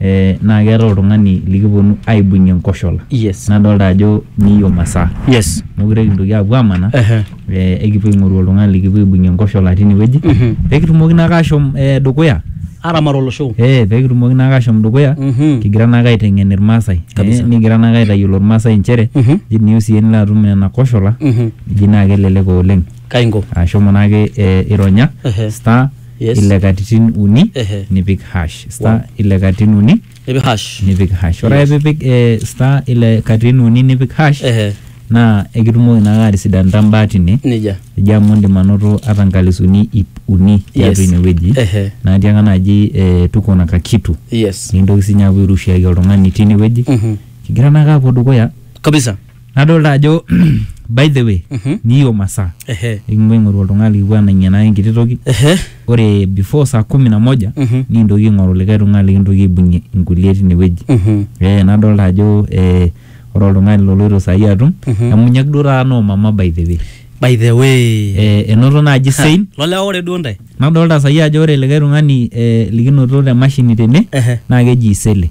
eh, naa keetae oltung'ani likiponu aibung'ie nkoshola Yes. nadolta ajo niyo masaa Yes. mokure kintoki apuo amanaa Ehe. eh, ekipuo aing'oru oltung'ani likipuo aibung'ie nkoshola tinewueji Mhm. pekitumoki naake ashom eh, dukuya Aramat olosho. eh, pekitumoki naake ashom dukuya Mhm. kigira naake aiteng'en irmaasai Kabisa. eh, nikigira naake aitayiolo irmaasai inchere Mhm. ji niyieu siyie nilo atum nena koshola Mhm. ji naa kelelek oleng Kaingo. ashomo naake eh, ironya Ehe. star Yes. ile katitin uni Ehe. nipik hash star Wow. ile katitin uni Nipik hash. nipik hash ore ake pipik eh, star ile katitin uni nipik hash Ehe. naa ekitumoki naake atisidanita mbaa tine Nejia. eji amu indim anoto ata nkalisuni ip uni tiatua Yes. inewueji Ehe. natii anga naji eh, tuko na kakitu Yes. nikintoki sinye apuo airushiaki oltung'ani tinewueji Mhm. kigira naake apuo dukuya Kabisa. nadolta ajo by the way Mhm. niyo masaa Ehe. nikipuo aing'oru oltung'ani likipuo anang'ienaki enkiti toki Ehe. ore before saa kumi na moja Mhm. nikintoki aing'oru likae tung'ani likintoki aibung'ie inkulie tinewueji Mhm. eh, nadolta ajo eh, ore oltung'ani loloito saai atum Mhm. emunyak duo taata noo mama by the way By the way. eh, enoto naaji Ha, sein Lolewa ore duo ntae. nadolta saai ajo ore likae tung'ani eh, likinoto te mashini tene Ehe. naa keji isele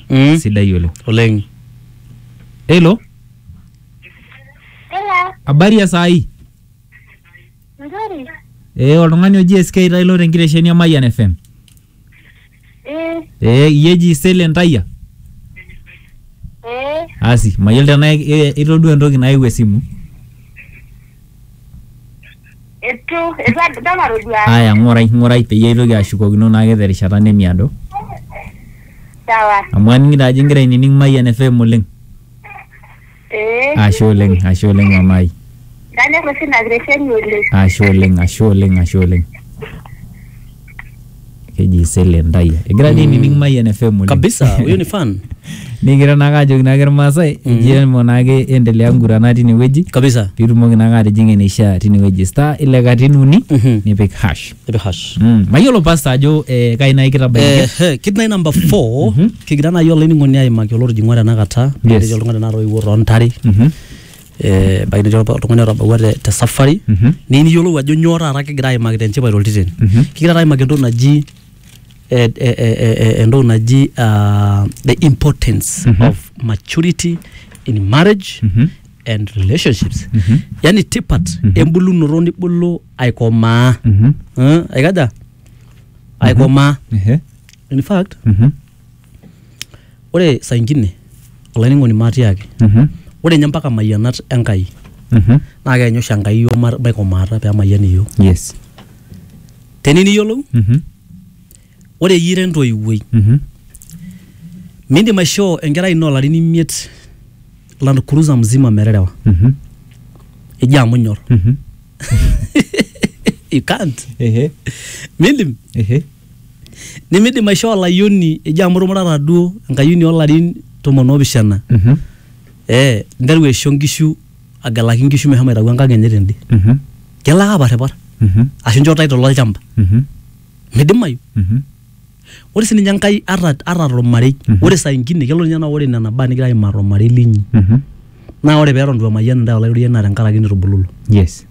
Mm. sidai oleng Oleng. helo Hello, habari ya saa hii nzuri. ee oltung'ani oji sk tailo tenkitesheni e mayian fm Eh, ee iyie eji sele ntayia eh, asi mayiolo tenaa i- i- itodua entoki nayewuo esimu Eitu, eitu adol atodua. Aya, ng'orai, ng'orai peyie aitoki ashukokino naake te rishata nemiado. Sawa. Amu aning'ito ajo ing'ira ainining Mayian FM oleng. Ee. Ashe oleng, ashe oleng mama ai. Kanyor oshi ina kiresheni oleng. Ashe oleng, ashe oleng, ashe oleng. keji sele ntai egira dii nining Mayian FM oleng kabisa huyu ni fan nikigira naake ajoki naake irmaasai eji emo naake endelea ngurana tinewueji kabisa piitumoki naake atijing'a eneishaa tinewueji star ile katitin uni Mhm. nipik hash Nipik hash Mm, mayiolo pasta ajo eh, kai naai kitabaiki Ehe, kit nai number four kigira nai olainining'oni aimaki olotijing'ua tenakata Yes. netii oltung'ani tenakata oiwuo toontare Mhm. eh, ebaiki netii olpa- oltung'ani otabawua te, te safari Mhm. niyieu niyiolou ajo nyoo taata kigira aimaki te nchipai toltiteni Mhm. kigira taata aimaki entoki naji eh, eh, eh, eh, eh, entoki naji ah, the importance Mhm. of maturity in marriage Mhm. and relationships Mhm. yani tipat Mhm. embulunoto nibulu aikomaa Mhm. Eh, aikaja aikomaa Ehe. in fact Mhm. Ore saa ingine olainining'oni maatiaaki ore ninye mpaka imayianat e Nkai naa keanyu oshi Enkai iyiook mabaiki omaata pee emayian iyiook. Teniyieu niyiolou ore iyie ira entoiwuoi miindim aishoo enkerai ino olarin imiet land cruiser mzima meterewa eji amu inyor you can't miindim. nimidim aishoo olayioni eji amu itumuratata duo enkayioni oolarin tomon oopishana Mhm. ee nteru aisho nkishu agelaki nkishu meshomo aitayu enkang enye tende Mhm. kelo ake aparripar Mhm. ashu inchoo title olchamba Mhm. midimayu Mhm. ore sininye enkai ata ata tormarei Mhm. ore saa ingine kelo ninye naa ore nena baa nigira aimaa tormarei linyi Mhm. naa ore peeton itu emayian intae olaitoriani naa tenkaraki nitubululo yes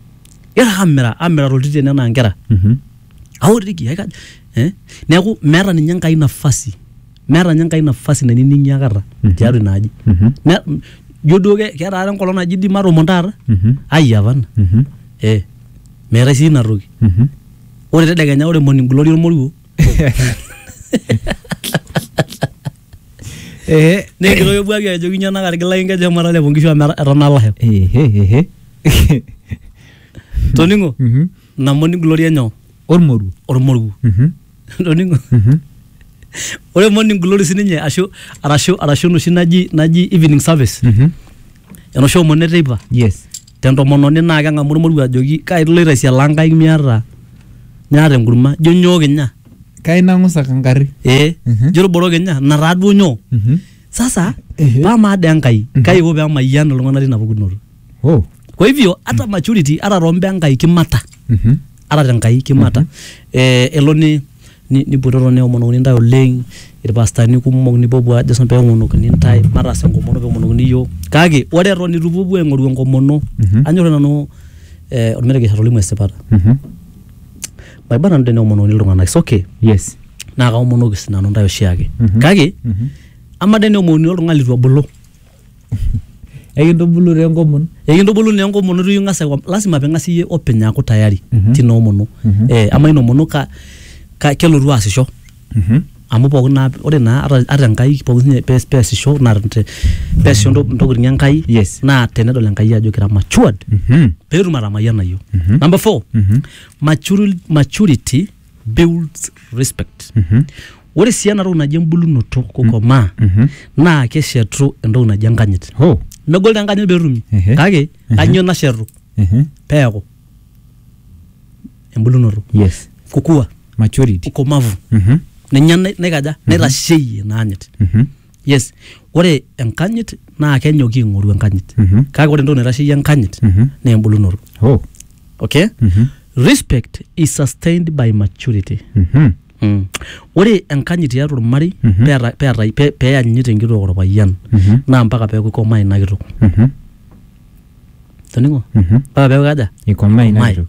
igira ake amira amira toltitian enaa inkera Mhm. aotiki aika eh? neeku meeta ninye enkai nafasi meeta ninye enkai nafasi nainining'i akata tiatua ina aji Mhm. Na- m- ijo duo ke- keeta taata enkolong naji di matomon taata Mhm. ai apana Mhm. eh meetae sii ina toki Mhm. ore tedekenya ore morning glory olmoruo Eh, nekitoki buaki ajoki nyoo nakarigilaki nkeju emara lepo nkishu amu etanaa lasho ehe, ehe. toning'o Mhm. namoni gloria nyoo ormoruo ormoruo Mhm. Toning'o? ore morning glory sininye ashu arashu arashu enoshi naji naji evening service Mhm. enoshi omon eteipa yes tentomononi naa keng'amu ormoruo ajoki kai iloito aisialaa nkaik miata miata enkurma jo nyoo kinya kai nang'usaka nkarri ee Mhm. jo ilborok kinya ina taa duo nyoo Mhm. sasa Ehe. paa maa dee enkai kai iko pee emayian iltung'anak tina pukunoto Oh. kwa hivyo hata maturity hata rombe enkai kimata Mhm. hata tenkai kimata eh, elo ni ni- nipototo neomonokini ntae oleng irpastani kumok nipopuo ajo sina peomonokini ntae mataas enkomono peomonokini iyiok kake ore eton itu ipuopuo aing'oru enkomono Mhm. anyor nanu eh, ormeregesh atolimu esipata Mhm. maiba nanu teneomonokini iltung'anak it's okay Yes. naa kaomonoki sinanu ntae oshiake Mhm. kake Mhm. ama teneomonokini oltung'ani litu ebulu Ekintubulu taa enkomono. Ekintubulu naa enkomono itu ing'as aiko, lazima ping'as iyie openy aaku tayari tina omono. Eh amaa ina omono ka ka kelotu aasisho? Amu pookin naa ore naa ata ata Enkai pooki siinye pee peesisho naa te peesisho intokiting Enkai Yes. naa tenedol Enkai ajo kira matured peetum atamayiana iyiok. Number four, maturil maturity builds respect Mhm. ore sii ena toki naji embulunoto kukomaa Mhm. naa keshetu entoki naji enkanyit Oh. megol taa enkanyit petumi Ehe. kake kanyio nashetu Mhm. peeku embulunoto Yes. kukua Maturity. ukomavu Mhm. ninye nai- naikaja naitasheyie ina anyit Mhm. yes ore enkanyit naa kenyoki ing'oru enkanyit Mhm. kake ore entoki naitasheyie enkanyit Mhm. naa embulunoto Oh. okay Mhm. respect is sustained by maturity Mhm. Mm. ore enkanyit tiatua ormarei Mhm. peeta- peetai- pe- peyanyit enkitok orpayian Mhm. naa mpaka peeku ikomaa ina kitok Mhm. toning'o Mhm. mpaka peeku kaja Ikomaa ina Ikomaa. kitok.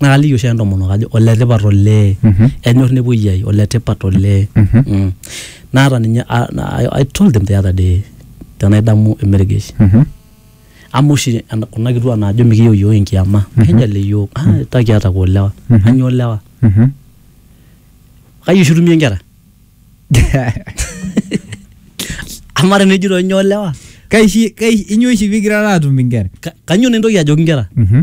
naa kaliki oshi ake intomonok ajo oletipat olee enyor nepuoi ai oletipat olee Mm. naata ninye a- na- I- I told them the other day tenaidamu emergesh amu oshi en- kuna kituak naajo mikiyieu iyiook enkiama kejal iyiook "Ah, ta kiata kwa olewa kanyoo olewa kaji oshi itumie inkera amaa tenejito inyoo olewa kaishi kaishi inyoo oshi pigira atum inkera Ka- kanyoo naa entoki ajoki inkera Mhm.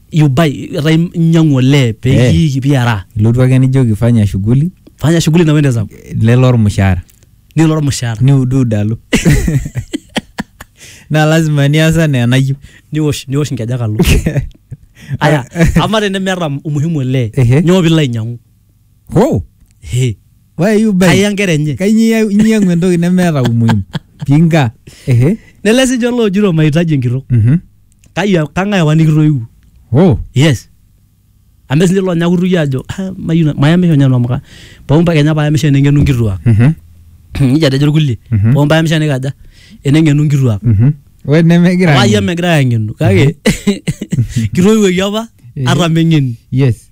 you buy etaa inyiang'u olee Eh. pekiiki piaraa ilotu ake nijoki fanya shughuli fanya shughuli na wende zangu lelo ormushaara nilo ormushaara niuduud alo naa lazima nias anaa enayieu niwosh niwosh inkejek alo aya ama tenemeeta umuhimu olee Ehe. nyoo pilo ainyang'u Ho! He. Why are you buying? Aya nkera enye. Kainyoo inyiang'u entoki nemeeta umuhimu? Pinga. Ehe. Nele sininche loojito mahitaji enkitok. Mhm. Kai kang'ae apa nikitoiwuo? Ho! Yes. Amu etii sininche loonya kutukie aajo "Ah, mayieu na- mayamisho ninye nanu amu ka- pooki mpaka kenya paayamisho eneng'enu nkituak. Mhm. Nijia etejo irkulie. Mhm. Pooki mpayamisho enikaja eneng'enu nkituak. Mhm. We nemegira. Wayie megira aang'enu kake kitoiwuoki apa Eh. ata meng'eni. Yes.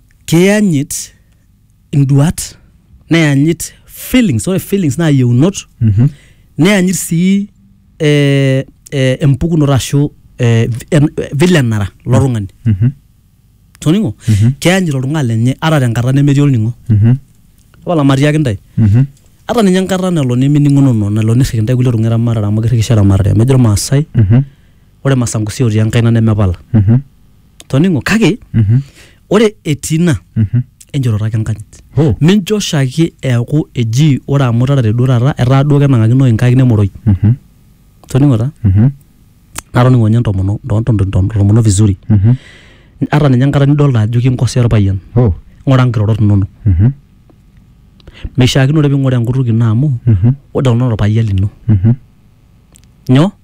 keyanyit induat neyanyit feelings ore feelings naa yieunot Mhm. neyanyit sii eh, eh, empukunoto ashu eh, vi- en- eh, vile enara lo tung'ani Mhm. toning'o Mhm. keyanyit oltung'ani lenye ata tenkata nemetii olning'o Mhm. tapala matiaki intae Mhm. ata ninye enkata nelo nemining'unono nelo nirriki intae kulie tung'anak eramatare amu kirrikisho eramatare amu ejo irmaasai Mhm. ore masangusi otii enkaina nemepala Mhm. toning'o kake Mhm. ore etii ina Mhm. enjoroto ake enkanyit Oh. mincho oshiake eaku eji ore amu itarate duo taata etaa duo kenang'akino inkaik nemoroi Mhm. toning'o taa Mhm. natoning'o ninye ntomono nto- nto- nto- ntomono vizuri Mhm. ata ninye enkata nidolta ajo kinkosea orpayian Oh. ng'ura nkirorot inonok Mhm. meishiakinore ping'ura enkutuk ino amu Mhm. ore kuna orpayian lino Mhm. nyoo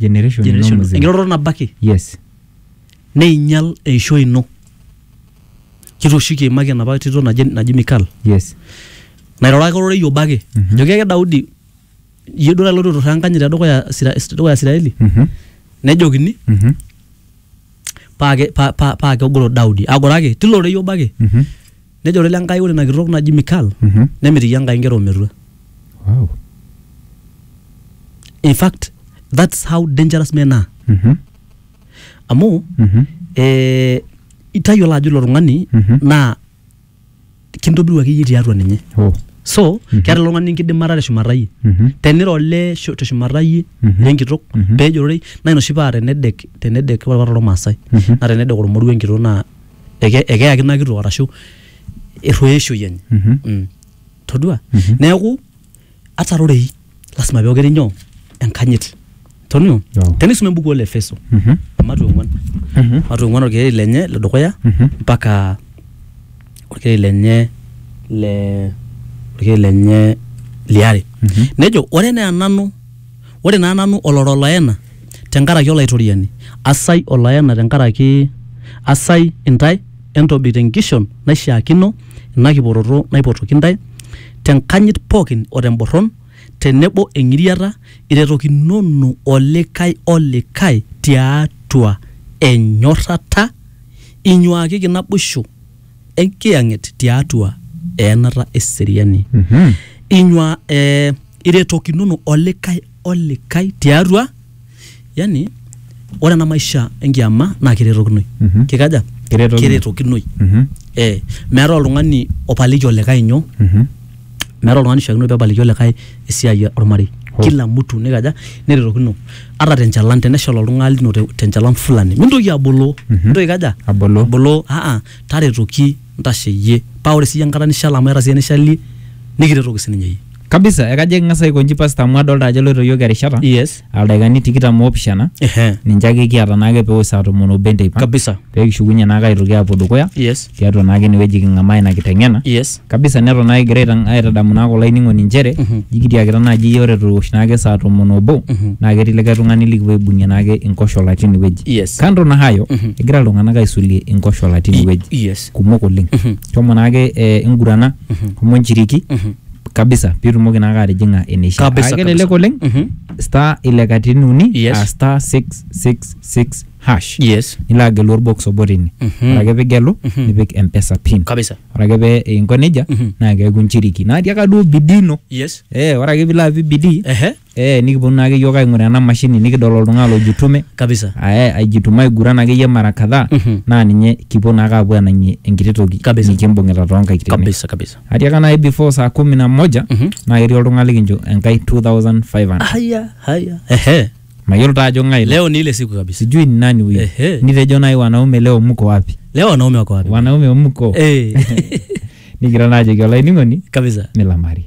generation ino generation mzima. enkiroroto nabo ake yes neinyal eishoi ino kitooshi kiimaki enapa tito naji, naji mikal yes nairoraka ororei obo ake Mhm. joki ake daudi iyie duo taloito turraa enkanyit tedukuya Isira- tedukuya isiraeli Mhm, nejokini mhm, paa ke- pa- pa- paa kegoro daudi agoraki tilo rorei obo ake mhm. Nejo ore lenkai ore ina kitok naji Mikal Mhm. nemitiki Enkai nkera ometua. Wow. In fact, that's how dangerous men are. Mhm. Amu Mhm. eh, itayiolo ajo ilo tung'ani Mhm. naa kintobiru akeyie tiatua ninye. Oh. So, Mhm. keeta ilo tung'ani enkidimata teshumata iyie. Mhm. teniro olee shu- teshumata iyie Mhm. lenkitok Mhm. pee ejororei naa ina oshi paa tenedek tenedek ore apa tormaasai Mhm. naa tenedek ormoruo enkitok naa eke, ekeyaki ina kitok arashu erruoyo eishoi enye Mhm. mm. todua Mhm. neeku ata rorei lasima pee okeri nyoo enkanyit tonio Joo. tenisum embuku ole efeso Mhm. ematu ong'uan Mhm. ematu ong'uan orkereri lenye le dukuya Mhm. mpaka orkereri lenye le orkereri lenye liare Mhm. nejo ore enaa nanu Ore naa nanu olora oloena te nkaraki Olaitoriani, asai oloena te nkaraki asai intae, entobik te nkishon naishiaakino ina kiporoto naipotoki intae, te nkanyit pooki o te mborron, te nebo eng'iriata, iretokinono olikae o likae ti atua enyorrata, inyuaakiki naboisho enkiyang'et tiatua eenata eseriani inyua eh, iretokinono olikae olikae tiatua yani ore ena maisha enkiama naa kiretokinoi Mhm. kikaja Kiretokinoi. kiretokinoi Mhm. eh, meetae oltung'ani opaliki olikae nyoo Mhm. meeta oltung'ani oishiakino pebaliki olikae esiai ormarei kila mtu nikaja nerretokino ata tenchalan teneshal oltung'ani lino te- tenchalan fulani mintoki aboloo mintoki aikaja Aboloo. aboloo aa taretoki ntasheyie paa ore siyie enkata nishal amu eeta siyie enishalie nikiretoki sininye iyie kabisa ekajo eking'as aiko inji pastor amu adolta ajo eloito iyiok erishata yes aldaikani tikitam oopishana Ehe. ninche ake kiata naake pewosh saa tomon obo enteipa kabisa pee kishukunye naake aitoki aapuo dukuya yes tiatua naake inewueji king'amaa ina kiteng'ena yes kabisa neton naake egira aitang- aitadamu naake olainining'oni inchere Mhm. jikitiakita naaji iyie ore towosh naake saa tomon obo Mhm. naa ketii likae tung'ani likipuo aibung'ie naake inkoshola tine wueji yes kando na hayo Mhm. egira iltung'anak aisulie inkoshola tine wueji yes kumok oleng Mhm. shomo naake eh, ingurana Mhm. shomo nchiriki Mhm. kabisa pitumoki naake atijing'a eneisha Kabisa, Aa kelelek kabisa. oleng Mhm. star ile katitin uni Yes. aa star 666 hash yes nilo agelu orbox obo tine Mhm. ore ake pigelu Mhm. nipik mpesa pin kabisa ore ake pee inko nejia Mhm. naa keeku nchiriki natii aka duo bidii ino yes eh ore ake pilo apik bidii ehe Ee nikiponu naake iyiook aing'uraa ena mashini nikidol oltung'ani lojitume kabisa ae aijituma aiguran akeyie mara kadhaa Mhm. naa ninye kipuo naake aapuo anang'ie enkiti toki Kabisa. nikimbung'ita toonkaik tene. kabisa kabisa Atiaka naai before saa kumi na moja Mhm. naa ketii oltung'ani likincho enkai 2500 haya haya ehe mayiolo taa ajo ng'ae ilo. leo ni ile siku kabisa sijui ni nani huyo Ehe. nitejo naai wanaume leo mko wapi leo wanaume wako wapi wanaume mko eh nikira naajoki olainining'oni kabisa milamari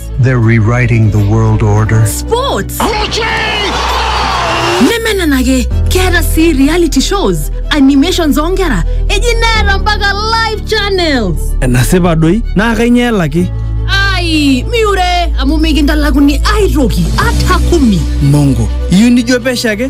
They're rewriting the world order. Sports! nemenenake keeta sii reality shows animations oonkera eji neeta mpaka live channels enasipa doi naa kainyoo elaki ai miure amu mikintalakuni aitoki ata kumi mongo iyieu nijo pesho ake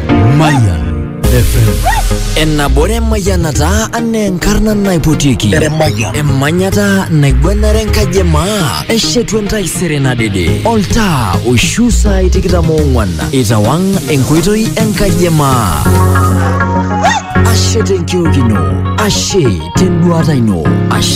Mayan FM. Enabore mayanata ane enkarna naipotiki. Emanyata naigwanare enkaji e maa. Eshetu entaisere nadede. Oltaa oishu saai tikitam oong'wan. Itawang' enkoitoi enkaji e maa. Ashe tenkiok ino. Ashe tenduata ino. Ashe